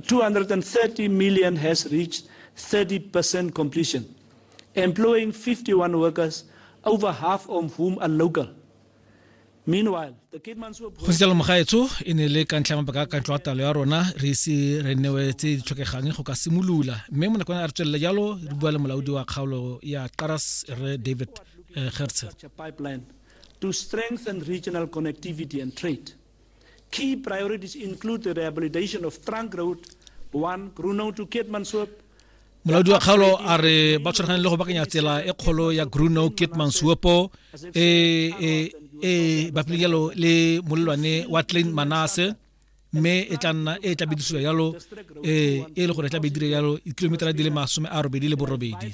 230 million has reached 30% completion, employing 51 workers, over half of whom are local. Meanwhile, the Keetmanshoop. go sejalo mogaetsho e ne le ka ntlha ya mabaka a kantlo ya talo ya rona re ise re newe tse di tlhokegang go ka simolola mme mo nakong a re tswelela jalo re bua le molaodi wa kgaolo ya qaras re david eh, gertse pipeline to strengthen regional connectivity and trade. Key priorities include the rehabilitation of trunk road 1 Grunow to Keetmanshoop molaodi wa kgaolo a re ba tshwaragane le go bakanya tsela e kgolo ya gruno kitmansuopo e e e bapilelo le molelwane wa tlin manase mme e tla nna e tla bedisiwa yalo e e le gore e tla bedire yalo kilometera di le masome a robedi le borobedi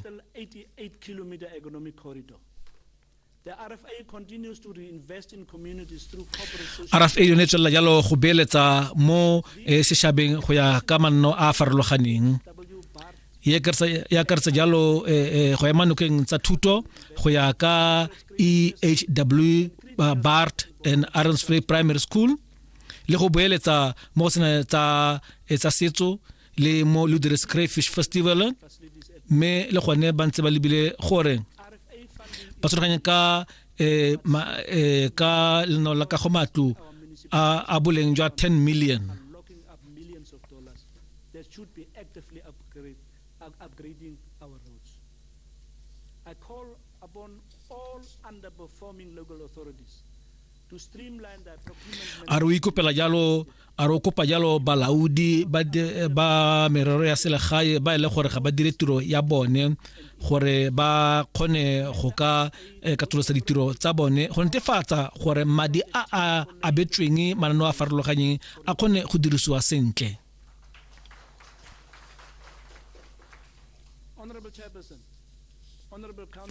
rfa yone e tswelela jalo go beeletsa mo eh, sešhabeng go ya ka manno a a farologaneng e akaretsa jalo eh, eh, go ema nokeng tsa thuto go ya ka ehw bart and aronsfrey primary school le go boeletsa mo go sena tsa setso le mo ludres crayfish festival mme le gone ba ntse ba lebile gore ba tshwaraganye ka eh, ma, eh, ka leno la kago matlo a, a boleng jwa 10 million upgrading our roads. I call upon all underperforming local authorities a re o ikopela jalo a re o kopa jalo balaodi ba, de, ba merero ya selegae ba e le gore ga ba dire tiro ya bone gore ba kgone go ka eh, katolosa ditiro tsa bone go netefatsa gore madi a a abetsweng mananeo a farologanyeng a kgone go dirisiwa sentle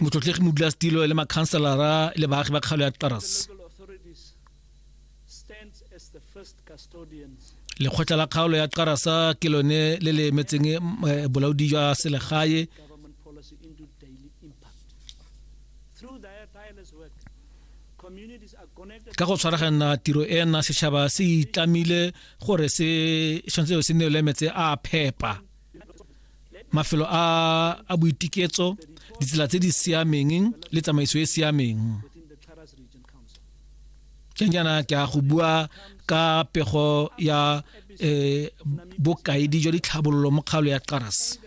motlotlegi modula's tilo le makhanselara le baagi ba kgalo ya taras lekgotla la kgaolo ya tarasa ke lone le le emetseng eh, bolaodi jwa selegae ka go tshwaragana tiro ena setšhaba se itlamile gore se tshwanetse se neole metse a phepa mafelo a a boitiketso ditsela tse di siameng le tsamaiso e siameng ke nyana ke a go bua ka pego ya eh bokaedi jwa ditlhabololo mo kgaolo ya Qaras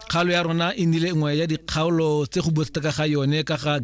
kgaolo ya rona e nile nngwe ya dikgaolo tse go botsa ka ga yone ka ga